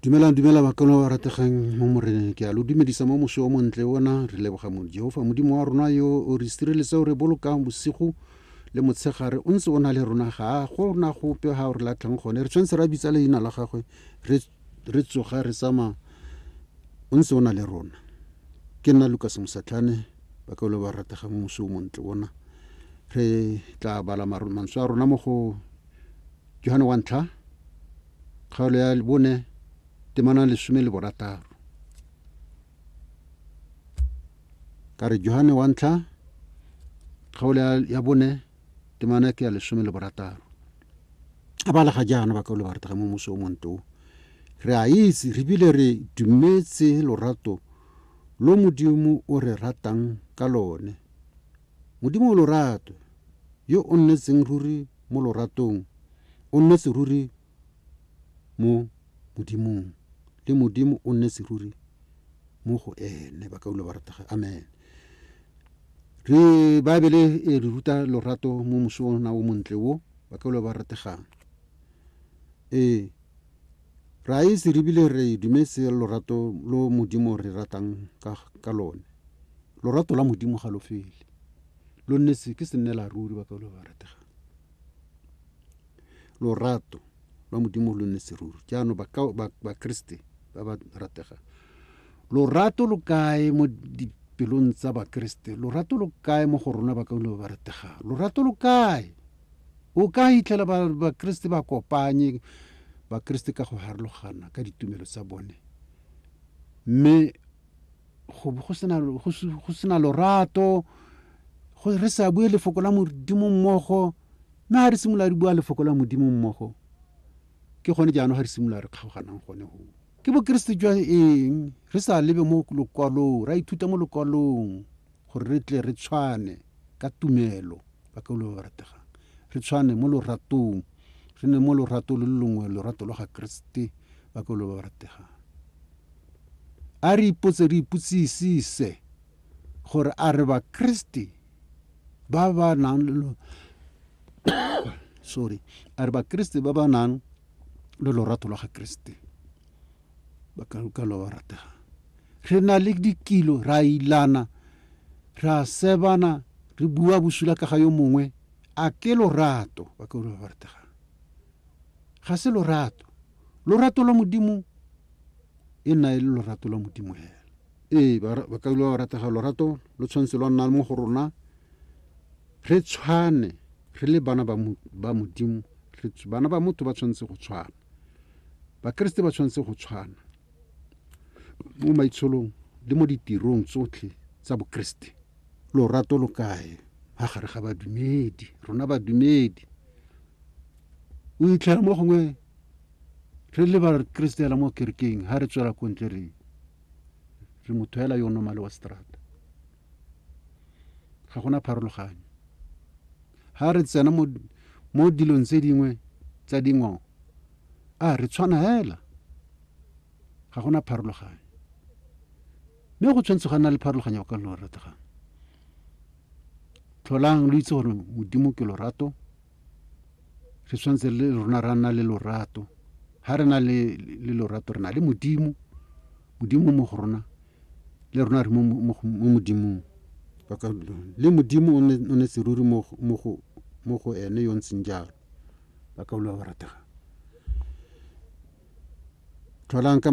dumelang dumela bakolo ba rategang mo moreneng ke a lo dumedisa mo moswi o montle ona re leboga mo jehofa modimo wa rona yo o re sireletse o re bolokang bosigo le motshegare o ntse o na le rona ga go na gope ga o re latlhang gone re tshwanetse ra bitsa leina la gagwe re tsoga re tsamaya o ntse o na le rona ke nna lukas mosatlhane bakolo ba rategang mo moswi o montle ona re tla bala mantswe a rona mo go Johane wa ntlha kgaolo ya bone temana lesome le borataro ka re Johane wa ntlha kgaolo ya bone temana ke ya lesome le borataro a ba lega jaana ba ka o le baratega mo moso o monto re a itse re bile re dumetse lorato lo modimo o re ratang ka lone Modimo o lorato, yo o nnetseng ruri mo loratong, o nnetse ruri mo Modimong, le Modimo o nnetse ruri mo go ene. Ba ka dula ba rategela. Amen. Re, Baebele e re ruta lorato mo mosong ona o montle wo, ba ka dula ba rategang. Ee. Re a itse re bile re dumetse lorato lo Modimo re ratang ka, ka lone. Lorato la Modimo ga lo fele. Lo nnetse ke sennela ruri ba Paulo ba rategang. Lorato lwa Modimo lo nnetse ruri. Jaanong ba, ba, ba Kriste ba ba rategang. Lorato lo kae mo dipelong tsa ba Kriste? Lorato lo kae mo go rona ba Paulo ba ba rategang? Lorato lo kae? O ka hitlhela Bakeresete ba kopanye Bakeresete ka go harologana ka ditumelo tsa bone, mme go bo go sena lorato, re sa bue lefoko la Modimo mmogo. Mme ga re simolola re bua lefoko la Modimo mmogo, ke gone jaanong ga re simolola re kgaoganang gone go. Ke Bokeresete jwa eng? Re sa lebe mo lokwalong, ra ithuta mo lokwalong. gore re tle re tshwane ka tumelo, bakeolo ba ba rategang, re tshwane mo loratong, re nne mo lorato lo longwe, lorato lwa ga Keresete, bakeolo ba ba rategang. A re ipotse, re ipotsisise gore a re Bakeresete ba ba nang le sorry a re Bakeresete ba ba nang le lorato lwa ga Keresete Ba kankelo ba ratega. Re na le dikilo, re a ilana, re a sebana, re bua bosula ka ga yo mongwe. A ke lorato, bakaulwa ba ba rategang? Ga se lorato. Lorato lwa Modimo e nna e le lorato lwa Modimo hela. Ee, bakaulwa ba ba rategang, lorato lo tshwanetse lwa nna mo go rona. Re tshwane, re le bana ba Modimo, bana ba motho ba tshwanetse go tshwana. Bakeresete ba tshwanetse go tshwana mo maitsholong le mo ditirong tsotlhe tsa Bokeresete. Lorato lo kae ha gare ga badumedi, rona badumedi? O itlhela mo gongwe re le Bakeresete hela mo kerekeng ha re tswela ko ntle re re motho hela yo nomale wa seterata. ga gona pharologanyo ha re tsena mo mo dilong tse dingwe tsa dingwao a re tshwana hela ga gona pharologanyo mme go tshwanetse go nna le pharologanyo go ka lo rategang tlholang lo itse gore modimo ke lorato re tshwanetse le rona ra nna le lorato ha re na le lorato re na le modimo modimo mo go rona le rona re mo modimong le modimo o ne seruri mo go ene yo ntseng jalo ba ka boloa go ratega tlholang ka